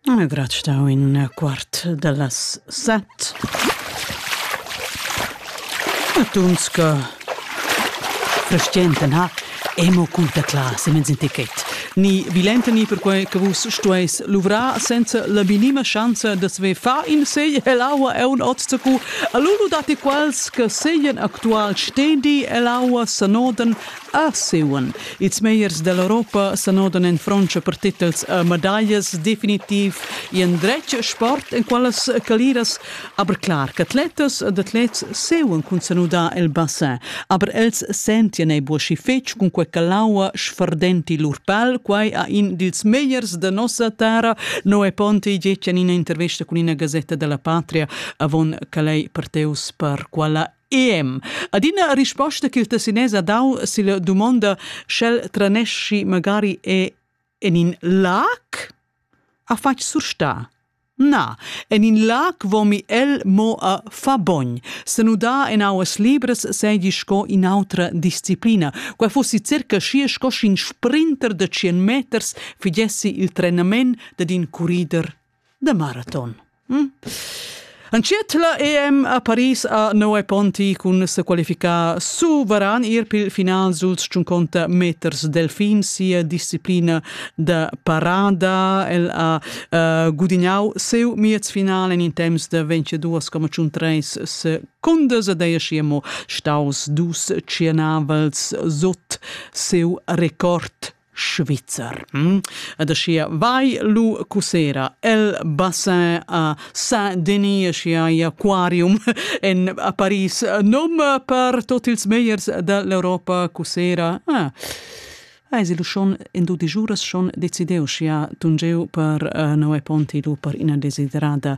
Non è grat stau in quart dallas set. Tuns che frestienten ha e mo cun teclar semens in ticket. Ni vilenta ni perquei che vus stueis luvrar senza la minima schanza da sve fa in segl ell'aua e un ozzacu. Allura datti quals che seglien actual stendi ell'aua sanoden Arseuen. Ils megliers dall'Europa senodan en Frontscha per tetels e medaglias, definitiv in dretg sport en quellas caliras. Aber clar qu'atletas ed atlets seuen cun senudar el bassin, aber els sentien ei buochi fetg cun quei ch'l'aua sferdenti lur pal. Quei ha in dils megliers da nossa terra. Noe Ponti getg en ina intervesta cun ina gasetta dalla Patria avon che lei parteus per quella EM. Adina risposta che il tessinese ha dau silla dumonda sch'el tranesci magari è en in lac ha fatg sursta. Na, en in lac vomi el mo a fa bogn. Se nuda en auas libras seigi sco in autra disciplina. Quai fossi circa schi sco sc'in sprinter de 100 meters figessi il trenament dad in currider da maraton. Hm? Entschiet la EM a Paris a Noe Ponti cun se qualificar suveran ir pil final suls 50 meters delfin sia disciplina da parada. El ha uh, gudignau seu miez final en in temps da 22,3 secondas ed ei schiemo staus dus tschienavels sot seu record Svizzer. Hm? Ed aschia vai lu cussera el bassin a Saint-Denis, aschia igl aquarium en a Paris. Nom per tot ils meiers dall'Europa cussera. Ah. Eis lu schon in du digiuras schon decideu, scia tungeu per uh, Noe Ponti lu per ina desiderada